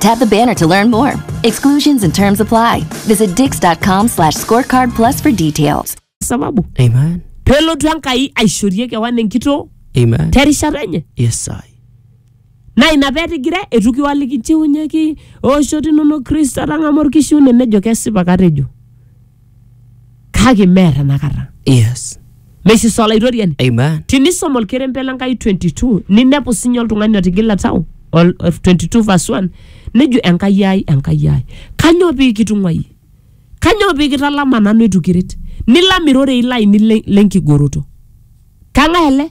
Tap the banner to learn more. Exclusions and terms apply. Visit dix.com slash scorecard plus for details. sababu Amen. pelotu enkai aishorie kewan enkitoo Amen. terishata enye Yes, I. naa ina petigire etu kiwaliki nchiunyeki ooshoto inonok kristo atang'amu orkishiune nejo kesipa katejo kake mear enakata Yes. meisisa olaitoriani Amen. tinisom olkerembe le nkai 22 ninepu sinye oltung'ani otigila tau ol- of 22 verse 1 nejo enkai ai enkai ai kanyoo pii kitung'uayie kanyoo pii kitalama nanu eitu kiret nilam irorei lainei le- lenkigoroto kang'ae ele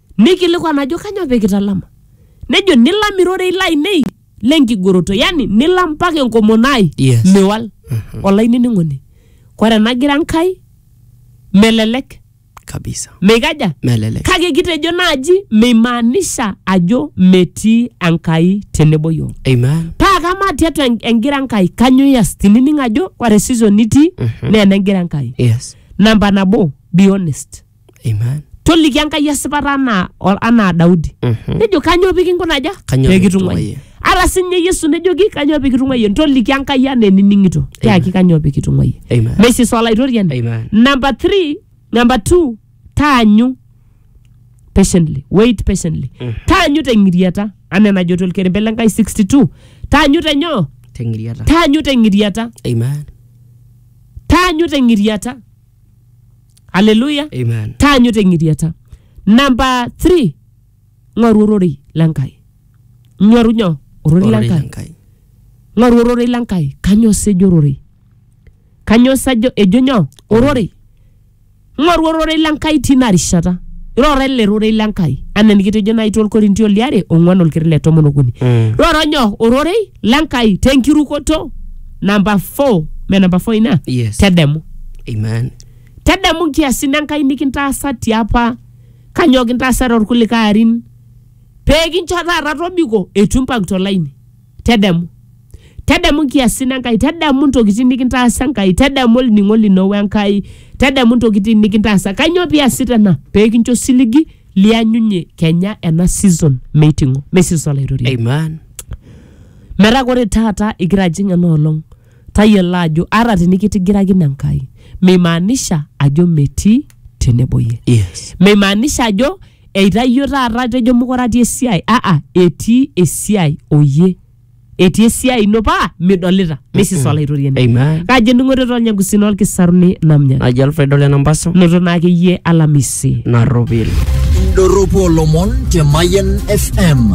Neikilikuan ajo kanyoo pee kitalama? Nejo nilam irorei lainei le nkigoroto, yani nilam mpaka enkomono ai Yes. miwal. Olainining'oni, kore enagira Enkai melelek, Kabisa. meikaja? Melelek. Kake kitejo naaji meimaanisha ajo metii Enkai tenebo yiok. Amen. Paa kamaa tiatua en- engira Enkai kanyoo ias tinining ajo ore season nitii naa enegira Enkai. Yes. Namba nabo, be honest. Amen. toliki enkai esipata anaa o- anaa daudi Mhm. nejo kanyoo pikinkunaja Kanyoo pikitung'uayie?" ata sinye yesu nejoki kanyoo pikitung'uayie ntoliki enkai anaa enining'ito tiaki kanyoo pikitung'uayie Amen. mesis olaitoriani Amen. number three number two taanyu patiently wait patiently taanyu teng'iriata anaa enajo tolkerembe le nkai 62 taanyu tenyoo Teng'iriata. taanyu teng'iriata Amen. taanyu teng'iriata aleluya Amen. taanyu teng'iriata namba 3 ng'oru ororei lenkai nyoru nyo ororei Ororei lenkai Enkai. ng'oru ororei lenkai kanyoo sa ejo ororei kanyoo sa ejo ejo nyoo ororei ng'oru ororei lenkai tina rishata iroro ele rorei lenkai anaa enikitejo nai tolkorintio liare ong'uan olkiri le tomon okuni Mm. roro nyoo ororei lenkai tenkirukoto namba 4 me namba 4 ina Yes. tedemu Amen. tedemu nkiasin enkai nikintaasa tiapa kanyoo kintaasa torkulikae arin pee kincho taata tobiko eitu impang tolaini tedemu tedemu nkiasin enkai tedemu ntokitin nikintaasa enkai tedemu olning'o lino wenkai tedemu ntokitin nikintaasa kanyoo piasita ena pee kincho siligi lianyunye kenya ena season meiting'o me season olaitoriani Amen. Metaa ore taata igira ajing ena olong, tayiolo ajo ata tinikitigirakine Enkai, meimaanisha ajo metii tenebo iyie. Yes. Meimaanisha ajo eitayio taata atejo mokure atii esiai. Aa, etii esiai o iyie. Etii esiai ino paa midolita. This is Olaitoriani. Amen. Kaji ening'ore tolnyagusi lolkisaruni namnya. Naji Alfred Ole Nampaso. Noto naa akeyie alamisi. Narropil. Indorropu olomon te Mayian FM.